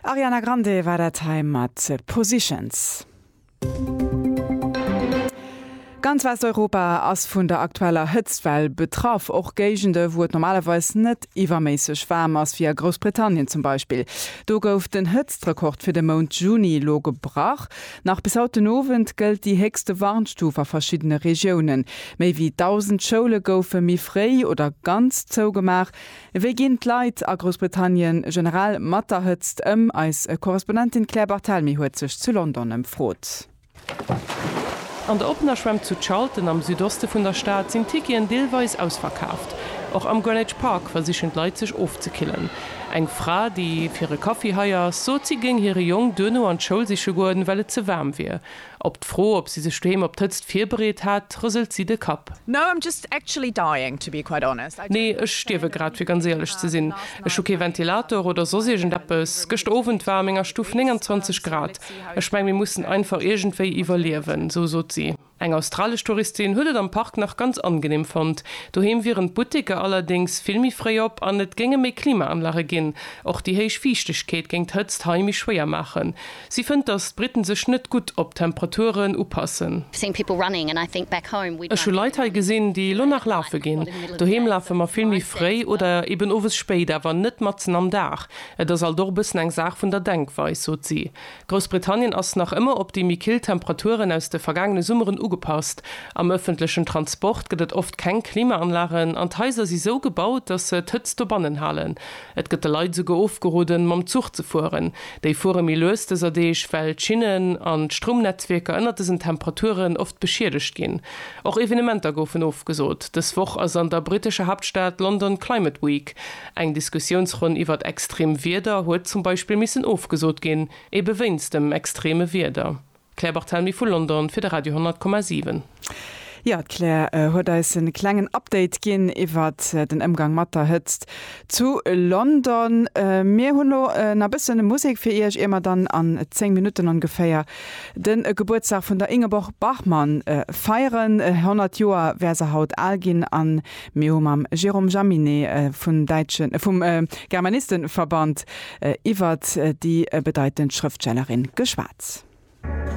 Ariana Grande war dat hei mat Positions. Ganz Westeuropa ass vun der aktueller Hëtztwell betraff. Och Géigende wou et normalerweis net iwwerméisseg waarm ass, wéi a Groussbritannien zum Beispill. Do gouf den Hëtztrekord fir de Mount Juni elo gebrach. Nach bis haut den Owend gëllt déi héchste Warnstuf a verschiddene Regiounen. Méi wéi 1.000 Schoule goufe méi fréi oder ganz zougemaach. Wéi ginn d'Leit a Groussbritannien generell mat der Hëtzt ëm? Eis Korrespondentin Claire Barthelmy huet sech zu London ëmfrot. An der oppener Schwämm zu Charlton am Südoste vun der Stad sinn d'Ticketen deelweis ausverkaaft. Och am Greenwich Park versichen d'Leit sech ofzekillen. Eng Fra, déi fir e Kaffi hei ass, sot si géing hire Jong duerno an d'Schoul siche goen, well et ze waarm wier. Op d'Fro, ob si sech doheem op d'Hëtzt virbereet hat, rëselt si de Kapp. Nee, ech stierwe grad, fir ganz éierlech ze sinn. Ech hu kee Ventilator oder soss iergend eppes. Gëschter Owend war a menger Stuff 29 Grad. Ech meng, mir mussen einfach iergendwéi iwwerliewen, sou sot si. Eng australesch Touristin huet et am Park nach ganz angeneem fonnt. Doheem wieren d'Butteker allerdéngs vill méi fréi op an et géinge méi Klimaanlage ginn. Och déi héich Fiichtegkeet géing d'Hëtzt hei méi schwéier maachen. Si fënnt, datt d'Britten sech net gutt op d'Temperaturen upassen. Ech hu Leit hei gesinn, déi elo nach lafe ginn. Doheem lafe mer vill méi fréi oder eben owes spéit, awer net matzen am Dag. Et ass alt och e bëssen eng Saach vun der Denkweis, sot si. Groussbritannien ass nach ëmmer op déi méi kill Temperaturen aus de vergaangene Summeren ugepasst. Am ëffentlechen Transport gëtt et oft keng Klimaanlagen an d'Haiser si sou gebaut, datt se d'Hëtzt dobannen halen. Et gëtt de Leit esouguer ofgeroden, mam Zuch ze fueren. Déi fuere méi lues dëser Deeg, well d'Schinnen an d'Stroumnetzwierker ënnert dësen Temperaturen oft beschiedegt ginn. Och Evenementer goufen ofgesot. Dës Woch ass an der brittescher Haaptstad London Climate Week. Eng Diskussiounsronn iwwert extreem Wieder huet zum Beispill missen ofgesot ginn, ebe wéinst dem extreeme Wieder. D'Claire Barthelmy vu London fir de Radio 10,7. Jo, d'Claire huet eis e klengen Update ginn iwwert den Ëmgang mat der Hëtzt zu London. Mir hunn elo nach e bëssen Musek fir Iech, ier mer dann an 10 Minutten ongeféier de Gebuertsdag vun der Ingeborg Bachmann feieren. 100 Joer wär se haut al ginn an Mir hu mam Jérôme Jaminet vum däitschen, vum Germanistenverband iwwert déi bedeitend Schrëftstellerin geschwat.